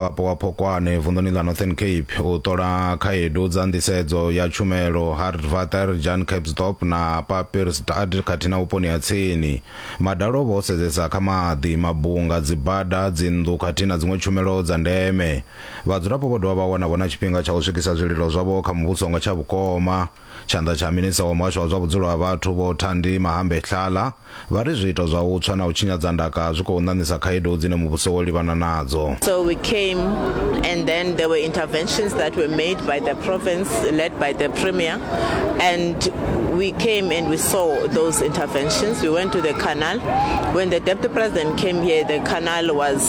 Mudzulapo wa Phokwane vunḓuni ḽa Northern Cape u ṱola khaedu dza nḓisedzo ya tshumelo Hartvater, Jan Capsdorp na Papirsdad khathihi na vhuponi ha tsini. Madalo vho sedzesa kha maḓi, mabunga, dzibada, dzinnḓu khathihi na dziṅwe tshumelo dza ndeme. Vhadzulapo vho dovha vha wana vho na tshifhinga tsha u swikisa zwililo zwavho kha muvhuso nga tsha vhukoma. Tshanḓa tsha minista wa muhasho wa zwa vhudzulo ha vhathu Vho Thandi Mahambe Hlala vha ri zwiito zwa u tswa na u tshinyadza ndaka zwi khou ṋaṋisa khaedu dzine muvhuso wo livhana nadzo. So we came and then there were interventions that were made by the province led by the premier and we came and we saw those interventions we went to the canal when the deputy president came here the canal was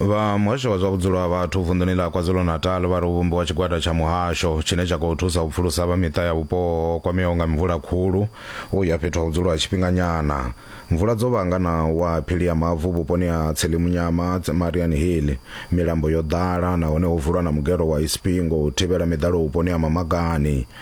vha muhasho wa zwa vhudzulo ha vhathu vunḓuni ḽa kwazulu-natal vha ri u vhumbiwa tshigwada tsha muhasho tshine tsha khou thusa u pfulusa vha miṱa ya vhupo ho kwameaho nga mvula khulu u ya fhethu ha vhudzulo ha tshifhinganyana mvula dzo vhanga na wa phili ya mavu vhuponi ha tselimunyama marian hill milambo yo ḓala nahone ho vulwa na mugero wa ispingo u thivhela miḓalo vhuponi ha mamagani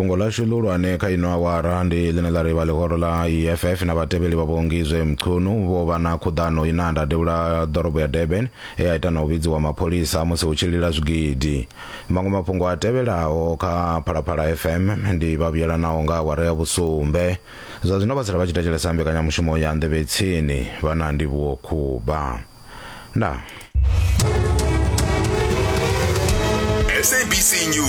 fhungo ḽashu ḽihulwane kha ino awara ndi ḽine ḽa ri vha ḽihoro ḽa eff na vhatevheli vha vhongizwe mchunu vho vha na khuḓano ine a ndadevhula ḓorobo ya durban e a ita na u vhidziwa mapholisa musi hu tshi lila zwigidi maṅwe mafhungo a tevhelaho kha phalaphala fm ndi vha vhuyelanaho nga awara ya vhusumbe zwa zwino vha sala vha tshi thetshelesa mbekanyamushumo ya nḓevhe tsini vha na ndivhuwo khuba ndaa